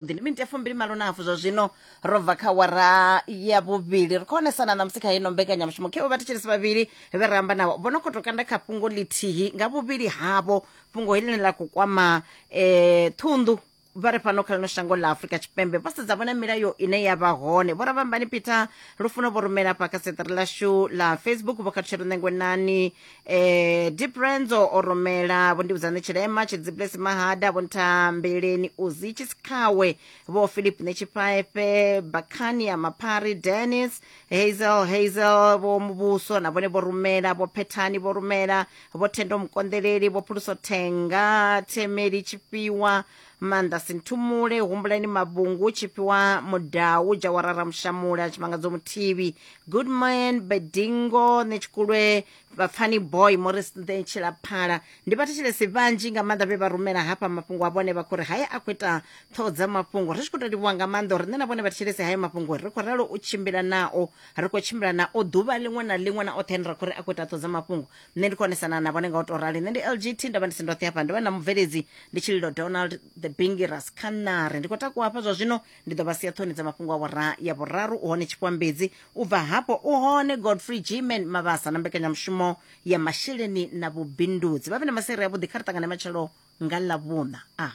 ndi miniti ya fumbili malo na hafu zwa zwino ro bva kha wara ya vhuvhili ri khou onesana na musi kha ino mbekanyamushumo khewo vhathetshelesi vhavhili vhe ra amba navho vho no khou to kanda kha fhungo ḽithihi nga vhuvhili havho fhungo heḽine ḽa khou kwama um ṱhunḓu vha re fhano kha ḽino shango ḽa afurika tshipembe vho sedza vhona milayo ine ya vha hone vho ravhambani peter lufuno vho rumela afha kha seṱere ḽashu ḽa facebook vho khathutshelo ṋengwenani eh deep renzo o rumela vho ndivhudzane tshilema tshidziplesi mahada vho nthambeleni uzi tshisikhawe vho philip netshiphaepe bakhani ya maphari dennis hazel hazel vho muvhuso na vhone vho rumela vho phethani vho rumela vho thendo mukonḓeleli vho phuluso thenga themeli tshifhiwa manda sinthumule humbulani mabungu chifhiwa mudau jawara ramushamule achimangadzo muthivi goodman bedingo netshikulwe vapfani boy morris ntshilaphala ndi vhathetshelesi vhanzhi nga maanḓa vhe vha rumela hafha mafhungo a vhone vha khou ri haye a khou ita ṱhoho dza mafhungo ri tshi khou tou livhuwa nga maanḓa uri nṋe na vhone vhathetshelesi hayo mafhungo ri khou ralo u tshimbila nao ri khou tshimbila nao ḓuvha ḽiṅwe na ḽiṅwe na oṱhe ane ra khou ri a khou ita ṱhoho dza mafhungo nṋe ndi konesana na vhone nga u to rali nṋe ndi lgt ndavha ndi si ndoṱhe hafha ndovha na mubveledzi ndi tshililo donald the bingiras khanare ndi khou takuwa hafha zwa zwino ndi ḓo vha sia ṱhoni dza mafhungo a vhura ya vhuraru u hone tshikwambedzi u bva hafho u hone godfrey gman mavhasa na mbekanyamushumo ya masheleni na vhubindudzi vha vhe na masere avhuḓi kha ri ṱangane matshelo nga ḽavhuṋa a ah.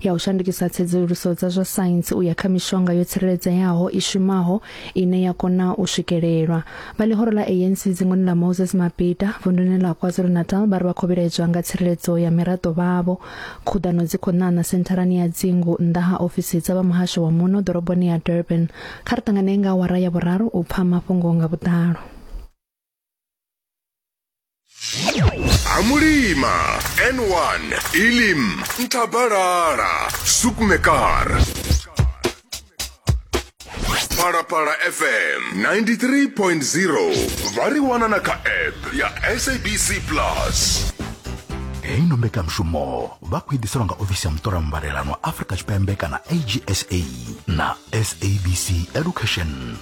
ya u shandukisa tsedzuluso dza zwa saintsi u ya kha mishonga yo tsireledzeaho i shumaho ine ya kona u swikelelwa vha ḽihoro ḽa ANC dzingoni ḽa Moses Mabhida vunduni ḽa KwaZulu-Natal vha ri vha khou vhilaedzwa nga tsireledzo ya miraḓo vhavho khuḓano dzi khou ṋaṋa sentharani ya dzingu nnḓa ha ofisi dza vha muhasho wa muno ḓoroboni ya Durban kha ri ṱangane nga awara ya vhuraru u pfa mafhungo nga vhuḓalo amulima n1 ilim ntabalala sukmekar phalaphala fm 93.0 vha ri wana na kha app ya sabc plus heyi no mbekanyamushumo vha khou i ḓiselwa nga ofisi ya muṱola mbalelano afrika tshipembe kana agsa na sabc education